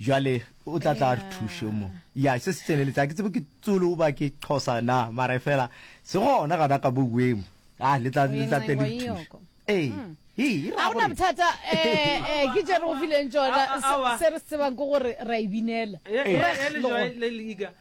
Jwale o tla tla re thuše mo. Ya, se se tseneletsa. Ke tsebe ke Tsulu ba ke Xhosa na, mara e fela se gona gana ka bo weng. Ah, le tla le tla tle le thuše. Ee. Hmm. Hii, ra gore. Thata eh eh ke jere go fileng tsona se re tsebang go gore ra ibinela. Re le joy le liga.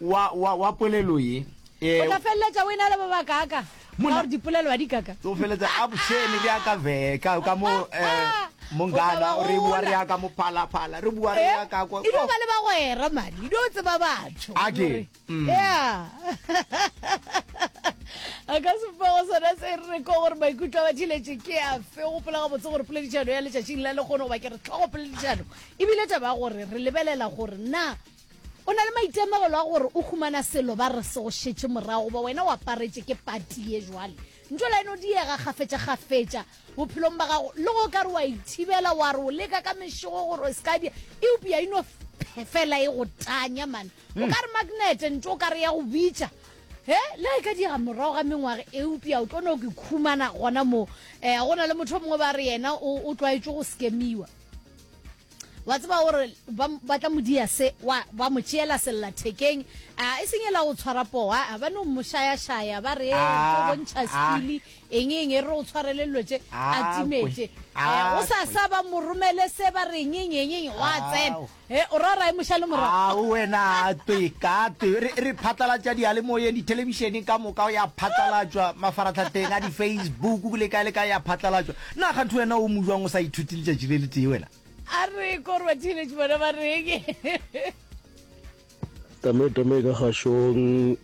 wa, wa, wa polelo ye. O tla feleletša o e na le ba bakaaka ka Monna- gore dipolelo a di kaka. o feletsa a bošene bja ka veka ka mo eh, mongana O tla ba re bua gola. re ya ka mo phalaphala re bua re Eh, ya ka kwa e dio ba le bagwera madi e dio tseba batho A ke, Gore- mm. Yeah. a ka sefago sona se re re ko gore maikutlo a bathiletše ke a fe o gopola gabotse gore poledišano ya letšatšing la lekgono goba ke re tlhogo poledišano ebile taba ya gore re lebelela gore na O na le maitemogelo a gore o humana selo ba re se go šetše morago goba wena o aparetše ke pati ye jwale. Ntšola e no diega kgafetšakgafetša bophelong ba gago le go ka re wa e thibela wa re o leka ka mešogo gore o se ka dia eupša e no fela e go tanya man. O ka re magnete ntšo o ka re ya go bitša he le e ka diega morago ga mengwaga eupša o tlo no ke khumana gona moo. Um go na le motho o mongwe ba re yena o tlwaetše go skemiwa. wa tseba gore ba tla modia se ba mo tšeela sellathekeng e seng e la go tshwara poo a ba no moshayashaya ba re ah, bontšha ah. skili eng eng e re o tshwarele dilo tše a ah, timetse eh, o sa sa ba mo romele se ba re enyenyenyenye wa tsena eh, o ra rae mošale morago wena twe ka twe re phatlalatša diyalemoyeng dithelebišeneng ka moka ya phatlalatšwa mafaratlhatlheng a di-facebook le kae le kae ya phatlalatšwa Na gatho wena o mojwang o sa ithuti letšatši le letee wena? A re korwa teenage bona ba reng? Tame tame ka gašong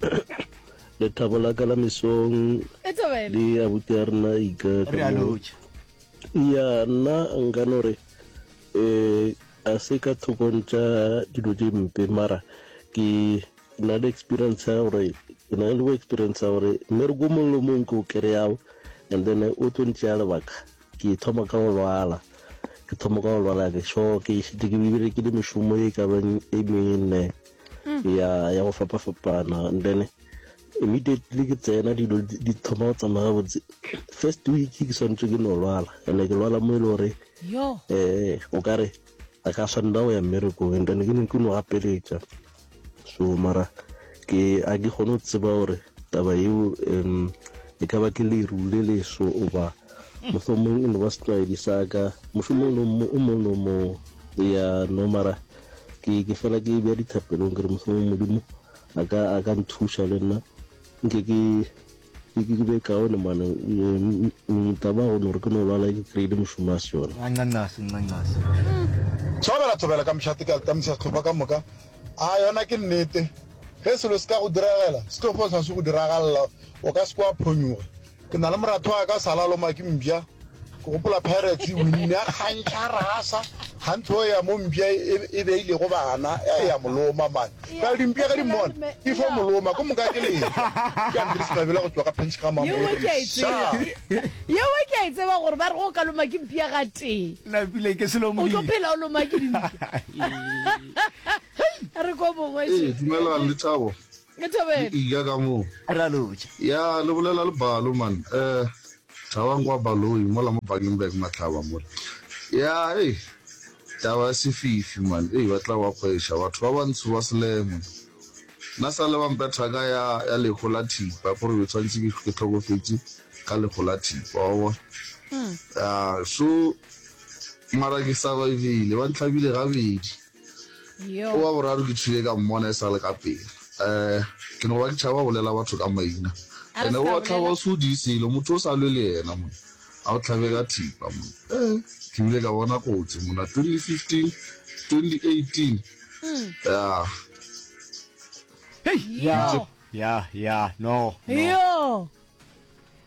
lethabo la ka la mesong E taba ena. le abuti ya rena ika ka Re a moo. lotšha. ya nna nka no re eh a se ka thokong tša dilo tše mpe mara ke Ke na le experience ya gore ke na le experience ya gore mere go mongwe le mongwe ke o kry-ago and then o tlo ntšea lebaka ke thoma ka go lwala ke thoma ka go lwala ke sho ke šite ke berekile mešomo e ka beng e mene mm. ya ya go fapa-fapana and then immediately ke tsena dilo di thoma go tsamaya botse first week ke swanetse ke no lwala and ke lwala mo e le gore um o kare a ka swanela go ya mmerekong and then ke ne ke no gapeletša so mara ke a ke kgone go tseba gore taba yeo um e ka ba ke leru le leso oba mohlomong e no ba setlwaedi sa ka mohlomong o mong le o mong ya no mara ke ke fela ke bja dithapelong ke re mohlomong modimo a ka a ka nthuša le nna nke ke Ke ke be kaone mane mita ba gone gore ke no lwala ke kry-ile mošomo a se yona. Nqanqase, nqanqase. Thobela, thobela ka mehla teka tamisa sehlopha ka moka. A yona ke nnete. Ge selo se ka go diragela, se tlo fosa se go diragalela, o ka se ke wa phonyuga. Ke na le moratho wa ka o sa laloma ke mpša. ke gopola pirates e winne a kgantšha rasa ga ntho ya mo mpša e beilego bana e ya moloma mane ka dimpša ga di mmona di fo moloma ko moka ke leka ke andres mabela go tswa ka pench ga mamoyeo ke a e tseba gore ba re go ka loma ke mpša ga tee o tlo phela o loma ke dimpša re ko mongwe dumelang le thabo e thobela ka moo ya le bolela le balo man um Thabang kwa Baloyi mola mo Bakenberg Matlaba mola. Ya ei taba ya sefifi man ei batla ba kgweša batho ba bantsho ba selemo na sale ba mpha thaka ya ya lekgo la thipa gore be tshwantse ke ke tlhokofetše ka lekgo la thipa wa bona ya so mara ke survivile ba ntlhabile gabedi. Yo wa boraro ke tšhile ka mmona e sa le ka pele. Um Ke no ba ke tšhaba go bolela batho ka maina. A re Ene ska o tlhaba bolela. o se o di selo, motho o sa lwe le yena monna. A o tlhabe ka thipa monna. Um Ke bile ka bona kotsi monna 2015, 2018. Yah. Hei! Yo. Yah, yah, no, no. Yo.